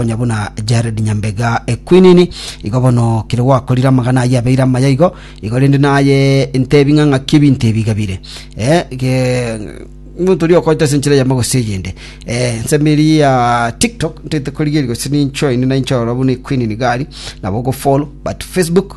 onye buna Jared Nyambega Equinini igo bono kere gwakorire amagana ayio abeire amaya igo igo rende naye ntebi ng'a ng'aki ebinto ebi gabire eh, ge- omonto oria okoete ase enchera yamo gose eyende eh, nsemeri ya tiktok ntaete korigeria gose ninchoine nainchorora buna Equinini gari nabo ogofollow but facebook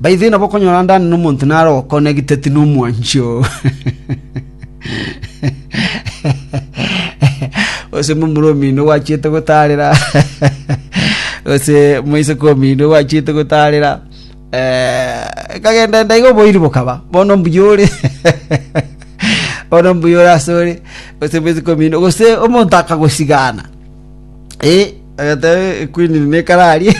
Baito inabo okonyora ndane nomonto nare okonegiteti nomwanchi oo. Gose momura omino gwachiete gotarera. Gose moiseke omino gwachiete gotarera. Eh, ekagenda enda iga oboiri bokaba. Bono mbuya ore. Bono mbuya ore ase ore. Gose moiseke omino. Gose omonto akagosigana. Eh, agatebe ekwinini nekararie.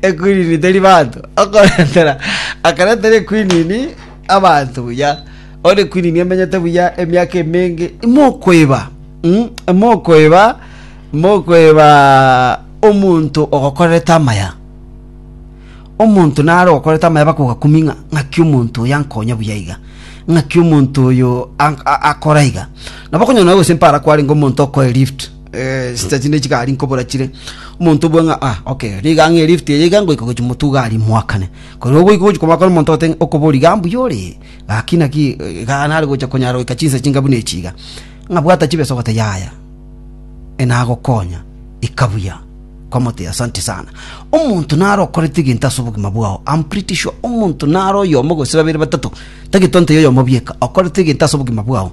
ekwinini teri bato okoretera akaretera ekwinini abanto buya ore ekwinini emenyete buya emiaka emenge imokoeba mm, imokoeba imokoeba omonto ogokorerete amaya omonto naro ogokorete amaya bakogakumia ng'a ng'aki omonto oyo ankonya buya iga ng'aki omonto oyo an- a- akora iga nabo okonyora nabo gose mpara kwarenge omonto okoe lift eh, sita chinde chigari nkobora chire omonto obwe ng'a ah okay riga ng'e lift eye iga ngoika gochi motu gari mwakane kore ogoika gochi komakana omonto ote ng'a okobori ga mbuya ore gaki naki eh, ga nare gocha konyara goika chinsa chinga buna echi iga ng'a bwata chibeso gote yaya enagokonya ikabuya kwamote asante sana omonto nare okorete egento ase obogima bwao I'm pretty sure omonto nare oyomo gose babere batato tagete onte yoyomo bieka okorete egento ase obogima bwao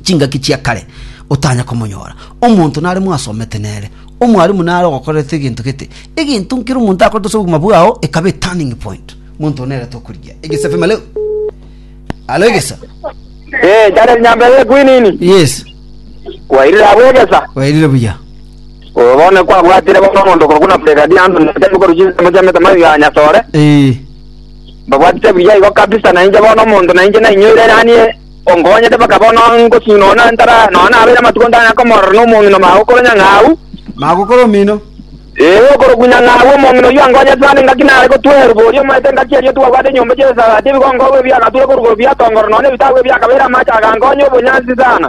chingaki chia kare otanya komonyora. Omonto nare mwasomete nere, omwarimu nare ogokorerete egento gete, egento nkere omonto akorete ase obogima bwao ekaba eturning point. Omonto one nere tokorigia. Egesa FM alo. Alo egesa. Eh, jana nyambere ekwinini. Yes. Kwairira abwegesa. Wairire buya. Obone kwa bwatire bono omonto kwa kuna pega di ando nete ko ruji mo jame tama ya nyatore. Eh. Babwatire buya igo kabisa na inje bono omonto na inje na inyoire yani Onkonyete mpaka bono ngosio nonya ntara, nonya nabeire amatuko ntanyare komorora nomong'ina mao okoro nyang'au. Mako okoro omino. Ee, okoro ku nyang'au, omong'ina oyio ankonyete naende ngaki nare gotweerwa boria omoeto engaki eria twabwate enyomba chi'esasati, ebigongogo ebiagaturwa korwa korwa biatongoro, nonya ebitabu ebiakabeire amache agankonya obonyansi sana.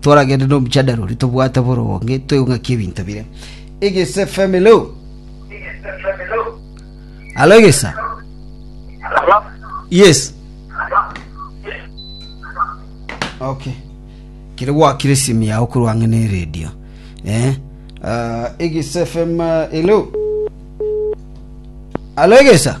Toragende nomochandaro oria tobwate boronge toigwe ng'aki ebinto bire. Egese family lo. Alo egesa. Yes. Okay. Kere gwakire simu yao korwa ang'e ne radio. Eh. Uh, egesa FM uh, hello. Alo egesa.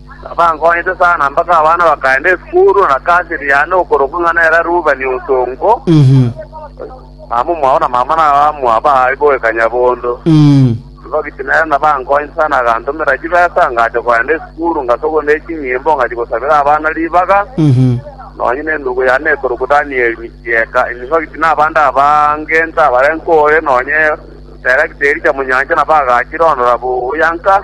Nabankonyete sana mpaka abana bakaenda esukuru, na nakasiri yane okorokwa ng'a nere Rubeni Osonko, mama omwabo na mama nabamua baye boika Nyabondo. Tibagiti nere nabankonyete sana agantomera chibesa, ngacha kogenda esukuru, ngasogwa ne chinyimbo, ngachia gosabera abana ribaga, nonya nenugu yane ekorokwa Danieli Michieka. Nibagiti nabande abange ntabarenge ore, nonya Terekteri Chamunyancha nabagachire orondora buya nka.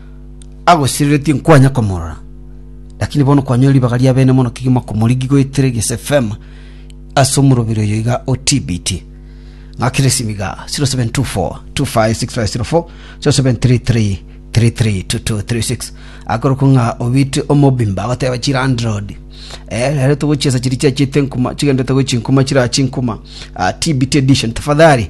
agosireretie nkwanya komorora. Lakini bono kwanyorire ribaga ria bene mono kegima komorigi goetera egese fema ase omorobiri oyo iga o TBT. Ng'akire esimi iga 0724 256504 0733 332236 akorokwa ng'a obite omobimba agoteba chilandlord eh rero togochiesa chiri chiachete nkuma chigendete gochi nkuma chirachi nkuma ah, TBT edition tafadhali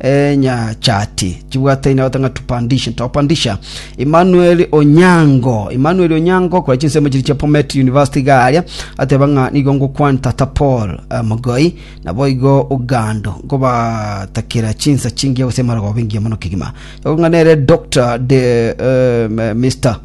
enyachati chibwataine abato ng'a tupandishe topandisha emmanuel onyango emmanuel onyango kora chinsemo chiri chia pomet university iga aria ateba ng'a nigo ngokwana tata paul eh, mogoi nabo igo ogando nkobatakera chinsa chingiya gose amarogoba engiya mono kegima ekong'a nere dr de, eh, m- mr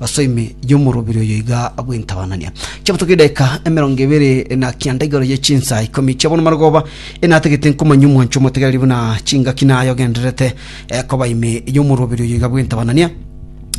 Ase ime y'omorobiri oyo iga bw'entabanania chiabatoka edageka emerongo ebere na kianda igoro ye chinsa ikomi chia bono marogoba enatagete nkomanya omwancho omotegereri buna chingaki naye ogendererete eh, koba ime y'omorobiri oyo iga bw'entabanania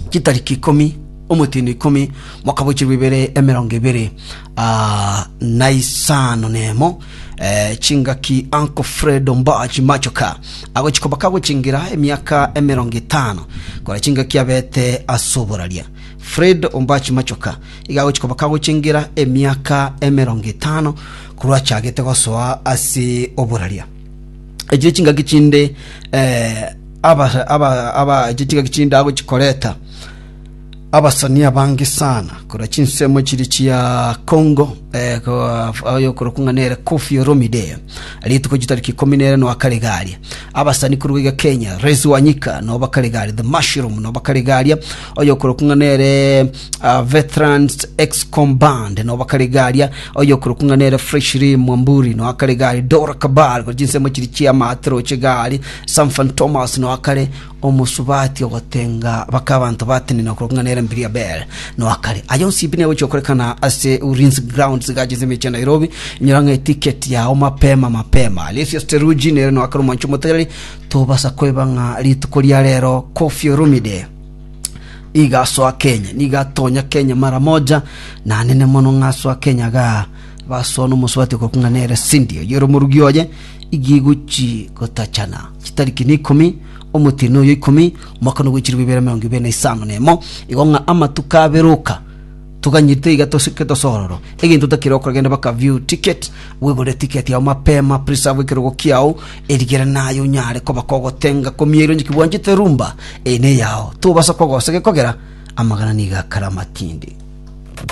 chitariki ikomi omotino ikomi mwaka bochirwa ibere emerongo ebere ah, na isano nemo Eh, chingaki Uncle Fredo Mbaji Machoka agochi koba kagochingira emiaka emerongo etano kora chingaki abete asoboraria Fredo Ombachi Machoka iga agochi koba kagochingira emiaka emerongo etano korwa achagete gosoa ase oboraria echire chingaki chinde eh, aba, aba, aba, echire chingaki chinde agochikoreta abasani abange sana korwa chinsemo chiri chia Congo eh, ko- ayo korokwa ng'a nere Koffi Olomide rituko chitariki ikumi nere no akaregaria abasani korwa iga Kenya Rezi Wanyika no bakaregaria The Mushroom no bakaregaria oyo korokwa ng'a nere ah, Veterans Excom Band no bakaregaria oyo korokwa ng'a nere Freshly Mwamburi no akaregaria Dora Kabal korwa chinsemo chiri chia Matro Chegari Samfan Thomas no akare Omosubati ogotenga bake abanto batenena korwa king'ana erembe ria Bel noa kare. Aya onsi pi negochia gokorekana ase Ulinzi Grounds gacha ase emechie ya Nairobi. Inyora ng'a etiketi yao mapema mapema. Alesius Teruji nere noa kare omwancho omotereri. Tobasa koeba ng'a rituko ria rero Koffi Olomide nigo asoa Kenya. Nigo atonya Kenya mara moja. Nanene mono ng'a asoa Kenya igaa. Basoa nomosubati okokuna nere sindio y'oromorugi oye igigu chigotachana chitariki na ikomi omotiri noyo ikomi omwaka nogwechiribu ibere emerongo ibere na isano na emo igo ng'a amatuko aberoka toganyirite iga tosike tosororo egento otakire gokora genda baka view ticket wegorere ticket yao mapema preserve ekerogo kiao erigere naye onyare koba kogotenga komieri onye ki bwanchete rumba eye neyao tobasa kogosa gekogera amagana nigo akare amatindi.